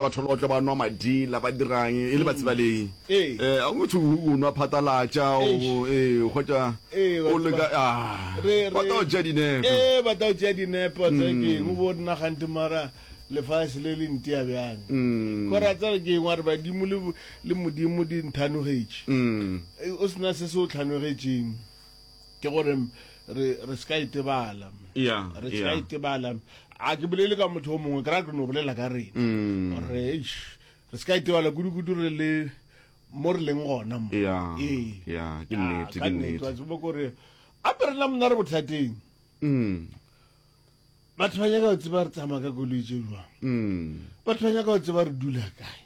Batho ba tlo ba nwa madila, ba dirang, e le batsibalei. Ee. Ga go thwe o nwa phatalatša, o, ee, o hwetša o leka, a, ba tla go tšea dinepo. Ee, ba tla go tšea dinepo, tsa ke eng, o bo nna gante mara lefase le le ntia bjang. Gore a tsere ke eng, wa re badimo le, le Modimo di nthanogetše. O se na se se o tlhanogetšeng. ke gore re re se ka itebala yeah, re se ka yeah. itebala a ke bolele ka motho o mongwe ke ra ke no bolela ka rena mm. gore eish re se ka itebala kudu-kudu re le mo re leng gona mo yeah, ee yeah, ke Ah, nnete ka ke nnete wa nnete tseba kore a pe rena mona re bothateng mm. batho ba nyaka go tseba re tsamaya ka koloi tse jwang batho ba nyaka go tseba re dula kae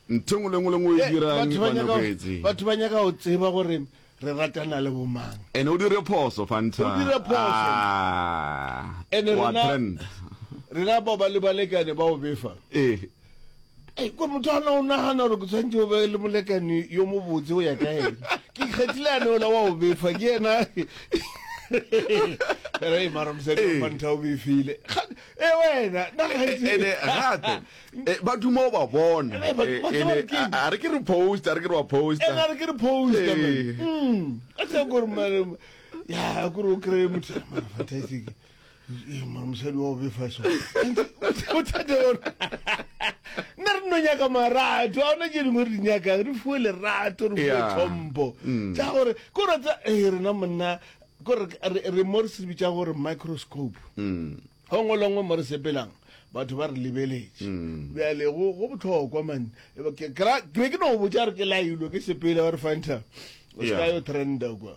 ntho engwe le engwe le ngwe o e Eh, dirang batho ba nyaka- banoketse batho ba nyaka go tseba gore re ratana le bomang ene o dire phoso fanta O dire phoso. Ah, Ene wa rena- trend rena ba ba le balekane ba o befa ee ko motho ana o nagana gore ke tshwanetse o be le molekane yo mobotse o ya ka ene ke kgethile ane ola wa o befa ke ena re mara mosadi wa mantha o befile e wena nagaetsene gape ba duma o ba bona a re ke re post a re ke re wa post a re ke re post a tsa gore ya gore o kry-e motho advertising mosadi wa obefa so bothata yona nna re no nyaka marato a ona tse dingwe re nyakang re fuwe lerato re fuwe tlhompho mm. tsa gore ko ratsa ee rena monna kore re mo re se bitsa gore microscope mm. go ngwe longwe mo re sepelang batho ba re lebeletse mm. bjale go botlhokwa mane ke be ke no botsa re ke lailo ke sepele ba re fanta o seka yo trenda kwa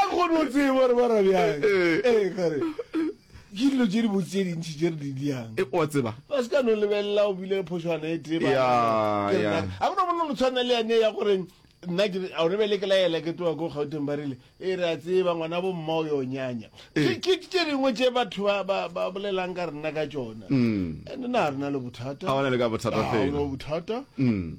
a kgone o tsebe gore ba ra bjang ee eh, kare ke dilo tse di botse tse dintšhi tse re di diang e o tseba ba se ka no lebelela o bile phošwana e tee ga gona bona lo tshwana le yane ya gore nna ke a re bele ke la ela ke twa go gauteng ba rile e re a tseba ngwana bo mma o yo nyanya ke ke ke dingwe tse batho ba ba ba bolelang ka rena ka tsona mm. and na rena le bothata ha ona le ka bothata fela ha ona bothata mm.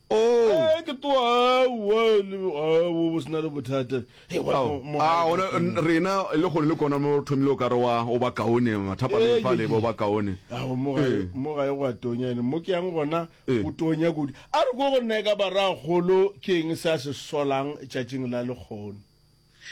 Oh. Eh, ke twa aowa le aowa bo sena le bothata Hey, wa- Ao, mo- a, ona, n- rena le kgone le kona mo thomile o ka re wa o ba kaone mathapa Eh, le fale ye, ba o ba kaone Ao, mo gae- Eh. mo gae go a tonya ene mo ke yang gona Eh. go tonya kudu a re ko go nna e ka baragolo ke eng se a se solang tšatšing la lekgono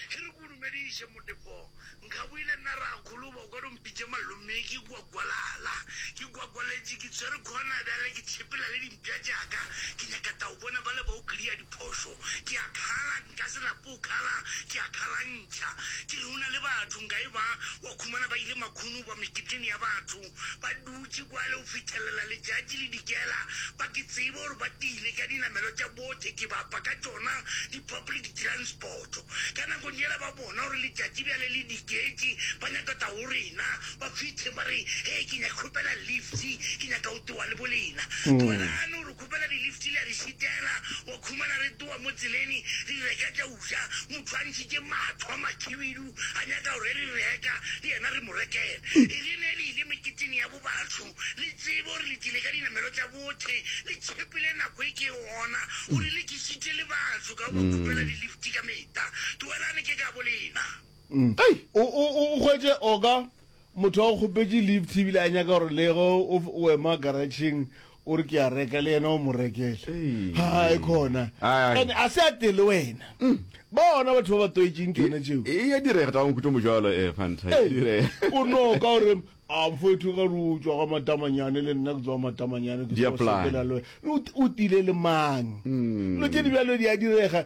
Ge re go dumediše Motepo Nkgaboile nna Rakgolo Boko do mpitše Malome ke kwa Gwalala Ke gwagwaletše ke tswere khona Bjale ke tšhepela le dimpša tšaka Ke nyaka tau bona bale ba o clear diphošo Ke a khala nka se lape o khala Ke a khalantšha ke re o na le batho Nka e ba wa khumana ba ile makhunu ba meketeng ya batho Ba dutše kwale go fithelela letšatši le dikela, ba ke tsebe gore ba tlile ka dinamelwa tša botekebapa ka tšona di-public transport. Ka nakong yela ba bona gore letšatši bjale le diketše, ba nyaka tla go rena, ba fithe ba re, Hee, ke nyaka kgopela lift, ke nyaka go tloga le bolena. Dumelane gore kgopela di-lift le a di šitela, wa khumana re tloga mo tseleni re reka tša go ja, motho a ntšhitše matho a makhibidu. A nyaka gore re reka le yena re mo rekele. E rile ne le ile meketeng ya bo batho, le tsebe gore le tlile ka dinamelo tša bothe, le tšhepile nako e ke e gona, gore le kišitše le batho ka go ba khupela dilifti ka mehta. Tlogelane ke ka bolena. Ei, o hwetše, Oka, Motho a go kgopetše lift ebile a nyaka gore le ge o ema garatšheng o re ke a reka le yena o mo rekele. Hai khona. Ene a se a te le wena. Ba ona batho ba ba toetšeng ke yona tšeo. E ya direga ka nkutlo mojalo eh Fanta. E direga. O no ka gore a mfowethu ka ru tšwa ga matamanyane le nna ke tswa matamanyane ke tswa sekela le wena. O tile le mang? No tše di bjalo di a direga.